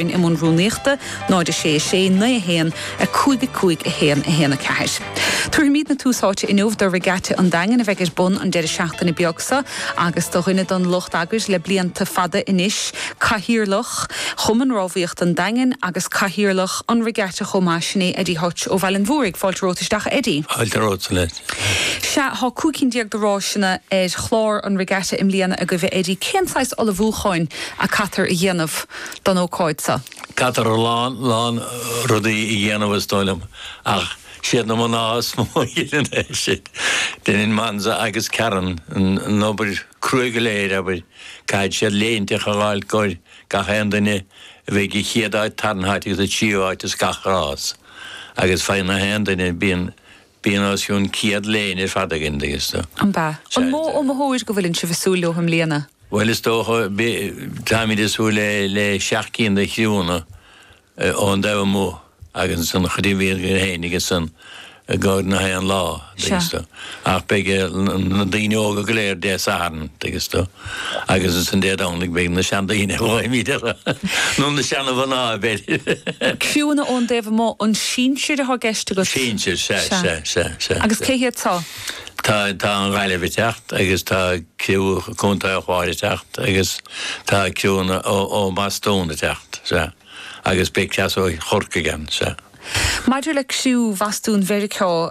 in am an rúnaíochta, 0 6 6 9 1 5 5 1 1 4. Tabharfaimidne tús áite inniu do Regatta an Daingin a bheidh ar bun an deireadh seachtaine beag seo agus do dhuine don lucht eagair le blianta fada anois, Cathaoirleach Chumann Rámhaíochta an Daingin agus Cathaoirleach an Regatta chomh maith, sin é Eddie Hutch ó Bhaile an Mhúraigh. Fáilte romhat isteach a Eddie. Sea, tá cúig cinn déag de ráiseanna ar chlár an Regatta i mbliana agaibh a Eddie. Cén saghas ullmhúcháin a caitear a dhéanamh? don ócáid seo. Caitear a lán, lán rudaí a dhéanamh is dóigh liom, ach siad na mná is mó a dheineann é sin. Deineann Maunza agus Karen an obair cruaidh go léir, abair, caithfidh siad léinteacha a fháil i gcomhair gach aon duine a bheidh an chéad áit, tarna háit agus an tríú áit ins gach rás agus faigheann gach aon duine, bíonn Bíonn os cionn 100 léine ar fad againn an dtuigeann tú. Ab ea? An mó iomaitheoir go bhfuileann sibh ag súil leo i mbliana? Bhuel is dócha, táimid ag súil le le seacht gcinn de chriúnna ón dtaobh amuigh agus ansan chuirfidh an bhliain chuige féin agus an gcor ina haon lá an dtuigeann tú. Ach beidh na daoine óga go léir Dé Sathairn an dtuigeann tú. Agus ansan Dé Domhnaigh beidh na seandaoine a ghlaoimid orthu, nó na seana-mhná b'fhéidir. Criúnna ón dtaobh amuigh, an sinsir atá i gceist agat? Sinsir, sea, sea, sea, sea. Agus cé hiad seo? Tá an Ghaillimh ag teacht agus tá criú Contae an Chláir ag teacht agus tá ceann ó Bhostún ag teacht, sea. Agus beidh cleas ó Chorcaigh ann, sea. Maidir le criú Bhostún Mheiriceá.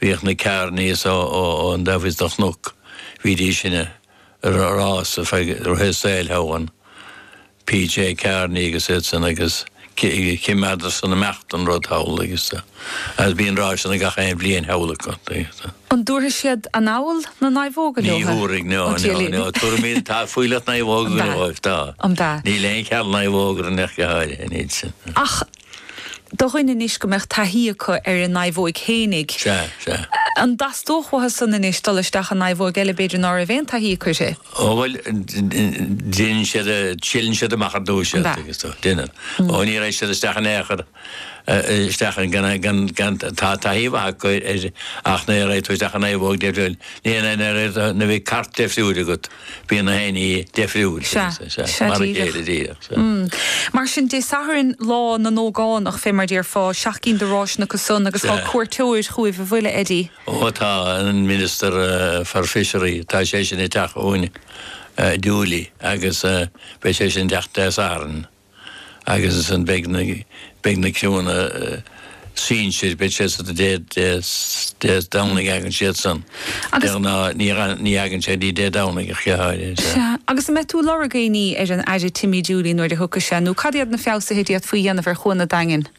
Bhíodh na Kearneys ón dtaobh thíos do Chnoc, bhídís sin ag rás ar feadh a saoil Hogan, PJ Kearney agus iadsan agus choimeádadar san ag imeacht an rud thall agus agus bíonn ráiseanna gach aon bhliain thall acu. An dtabharfaidh siad anall na naomhóga leo? Ní thabharfaidh, no, no, no, tabharfaimidne, tá fuílleach naomhóga go leor dóibh, tá. Níl aon cheal naomhóg ar an Hutch go háirithe, níl sin. Ach do dhaoine anois go mbeadh taithí acu ar a naomhóig fhéinig. Sea, sea. An dteastódh uathu san anois, dul isteach i naomhóig eile b'fhéidir ná raibh aon taithí acu uirthi? Ó bhuel, deineann siad, triaileann siad amach ar dtús iad, agus tá, deineann. Ó ní raghaidh siad isteach in aon chor, isteach in, gan, gan, gan taithí mhaith acu ar, ach nuair a raghaidh tú isteach i naomhóig deifriúil, ní raibh na, na bheadh cairt deifriúil agat. Bíonn gach aon ní deifriúil, mar a chéile díreach. Mar sin, Dé Sathairn lá na n-ógánach, fé mar déarfá, seacht gcinn de ráiseanna acu san agus tá cuairteoir chugaibh an bhfuil a Eddie. Ó tá, an Minister for Fishery, tá seisean ag teacht chugainn, Dooley, agus beidh seisean ag teacht Dé Sathairn. agus ansin beidh na criúanna sinsir, beidh siad san Dé Domhnaigh, bhuel, ní fhaigheann siad í Dé Domhnaigh ach go háirithe. Agus an mbeidh tú ag lorg aon ní ar an Aire Timmy Dooley nuair a thiocfaidh sé nó cad iad na feabhsuithe a d'fhéadfaí a dhéanamh ar Chuan an Daingin?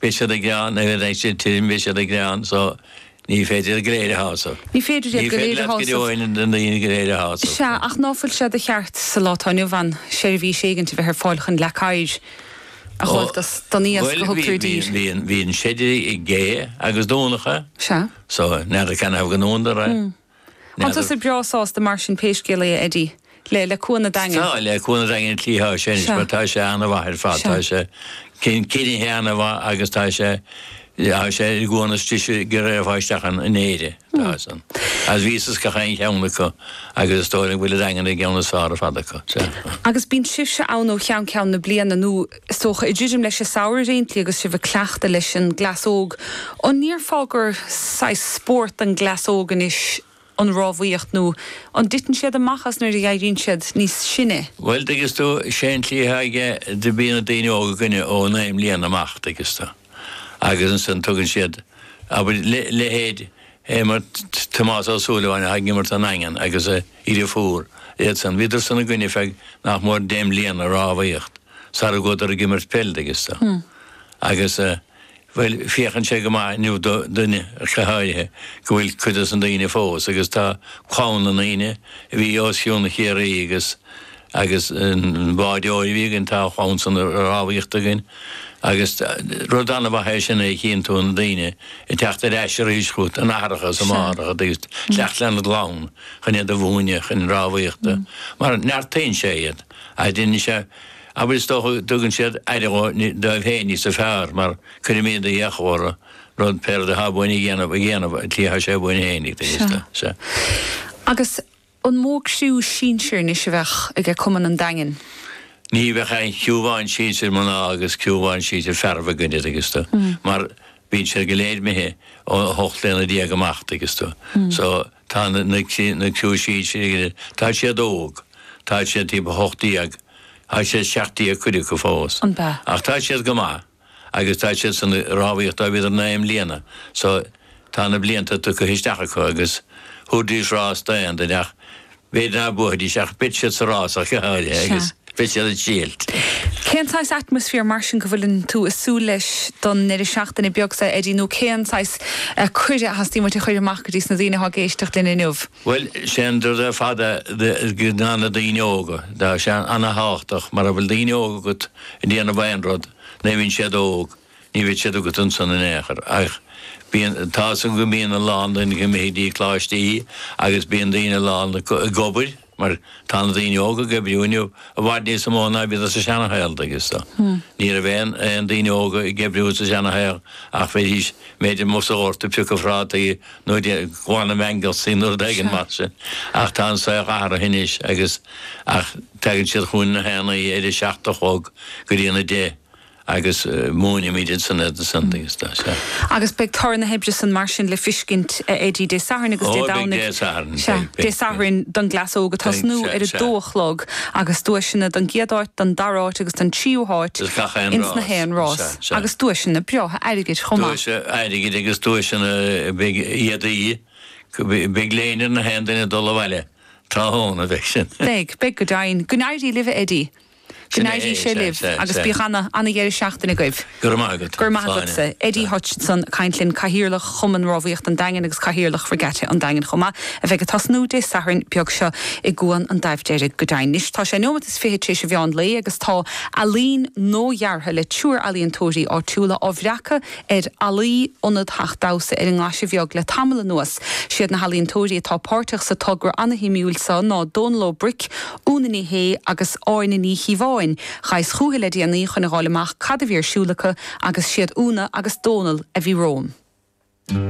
Beidh siad ag gearán nuair a bheidh siad tirim, beidh siad ag gearán so ní féidir iad go léir a shásamh. Ní féidir leat go deo na daoine go léir a shásamh. Sea, ach ná fuil sé de cheart sa lá atá inniu ann seirbhís éigin a bheith ar fáil chun leac oighir a fháil don iasc a thugtar i dtír? Ó, bhuel, bhí, bhí an seideadh ag gé agus dúnadar é. Sea. So, níor cheart dóibh go ndúnadar é. An bhfuil tú breá sásta mar sin pé scéal é, a Eddie, le, le Cuan an Daingin? Tá, le Cuan an Daingin sa tslí atá sé anois mar tá sé an-mhaith ar fad. Tá sé coinnithe an-mhaith agus tá sé, tá sé an cuan is deise chun gabháil isteach ann in Éire. Tá san. Agus bhíos is gach aon cheann acu agus is dóigh liom go bhfuil an Daingean ar an gceann is fearr ar fad acu. Agus bíonn sibhse ann ó cheann ceann na bliana nó? Is dócha, ag druidim leis an samhradh a thosnaíonn sibh agus sibh ag cleachtadh leis an gcleas óg, an ndéarfá gur saghas spórt don gcleas óg anois an rámhaíocht nó an dtiteann siad amach as nuair a éiríonn siad níos sine? Bhuel, an dtuigeann tú, sé an tslí atá aige, go mbíonn na daoine óga againne ó naoi mbliana amach, an dtuigeann tú. agus ansin tugann siad, abair, leithéid Tomás Ó Súilleabháin atá ag imirt don Daingean agus a iarraidh fúr, iadsan, bhíodar san againne ar feadh nach mór deich mbliana ag rámhaíocht sara gcuadar ag imirt peil, an dtuigeann tú. Agus, bhuel, féachann sé go maith inniu d'aon duine ach go háirithe go bhfuil cuid dos na daoine fós agus tá clann na ndaoine a bhí ar son Chiarraí agus agus an bádóir a bhí againn, tá a chlann san ag rámhaíocht againn agus rud an-mhaith é sin go gcíonn tú na daoine ag teacht ar ais arís chugat, aithreacha is máithreacha ag teacht lena gclann chun iad a mhúineadh chun rámhaíochta mar neartaíonn sé iad agus déanann sé obair is dócha go dtugann siad aire dóibh féin níos fearr mar cuirimid iachall orthu pé rud atá uainn a dhéanamh a dhéanamh ar an tslí atá sé uainn féin ag taobh agus. An mó criú sinsir anois a bheadh aige cumann an Daingin? Ní bheadh ach aon chriú amháin sinsir mná agus criú amháin sinsir fearaibh againn, an dtuigeann tú, mar bíonn siad go léir imithe ó 18 bliana amach, an dtuigeann tú. So, tá na criú sinsir againn, tá siad óg, tá siad timpeall 18, tá siad 17 cuid acu fós, ach tá siad go maith. agus tá siad san ag rámhaíocht ó bhíodar naoi mbliana so tá na blianta tugtha isteach acu agus thabharfaidís rás d'aon duine ach b'fhéidir ná buafaidís ach beidh siad sa rás ach go háirithe agus beidh siad ag triailt. Cén saghas atmaisféar mar sin go bhfuil tú ag súil leis don ndeireadh seachtaine beag so Eddie nó cén saghas cuireadh a theastaíonn uait a chur amach go dtís na daoine atá ag éisteacht linn inniu? Bhuel, sé an rud ar fad a dhéanann na daoine óga. Tá sé an-thábhachtach mara bhfuil daoine óga agat ag déanamh aon rud nuair a bhíonn siad óg, ní bheidh siad agat ansan in aon chor. Ach bíonn, tá's agam go mbíonn a lán daoine imithe go dtí Coláistí agus bíonn daoine a lán ag obair mar tá na daoine óga ag oibriú inniu i bhfad níos mó ná a bhíodar sa seana-shaol, tuigeann tú. Ní raibh aon daoine óga ag oibriú sa seana-shaol ach bheidís, b'fhéidir, amuigh sa ghort ag piocadh phrátaí Nó ag glanadh mangels nó rud éigin mar sin ach tá an saol athraithe anois agus ach tagann siad chugainn na haon oíche ar a seacht a chlog go dtí an 10 agus múinimid ansan iad ansan agus tá sé. Agus beidh toradh na hoibre san mar sin le fiscint a Eddie Dé Sathairn agus Dé Ó beidh Domhnaigh Dé Sathairn sea beidh Dé beidh beidh Sathairn don gcleas óg beidh ag tosnú sea ar a dó sea. a chlog agus duaiseanna don gcéad áit don dara háit agus don tríú háit Is gach aon ins na rás haon is ea. rás. Ghalltacht agus duaiseanna breátha airgid chomh maith. Duaiseanna airgid agus duaiseanna beidh éadaí, beidh léine ar na haon duine ag dul abhaile tráthnóna, beidh sin. Beidh, beidh go deimhin. Go n-éirí libh a Eddie. Go Sin é, n-éirí sé libh sea, agus sea. bíodh ana, ana dheireadh seachtaine agaibh. Go raibh maith agat, Go raibh maith agat, slán. sea. Eddie Hutchinson ag caint linn, Cathaoirleach Chumann Rámhaíochta an Daingin agus Cathaoirleach Regatta an Daingin chomh maith, a bheidh ag tosnú Dé Sathairn beag seo i gCuan an Daimh Deirg, go deimhin. Anois tá sé neomat is fiche tar éis an mheán lae agus tá. Ealaín nua-dheartha le triúr ealaíontóirí áitiúla á bhreacadh ar fhallaí Ionad Theach Damhsa ar an nGlaise Bheag le tamall anuas. Siad na healaíontóirí atá páirteach sa togra an-shuimiúil seo ná Dónal Ó Bric, Úna Ní Shé agus Áine Ní Chíobháin. Ghaibheas chucu le déanaí chun a dh'fháil amach cad a bhí ar siúl acu agus siad Úna agus Dónal a bhí romham.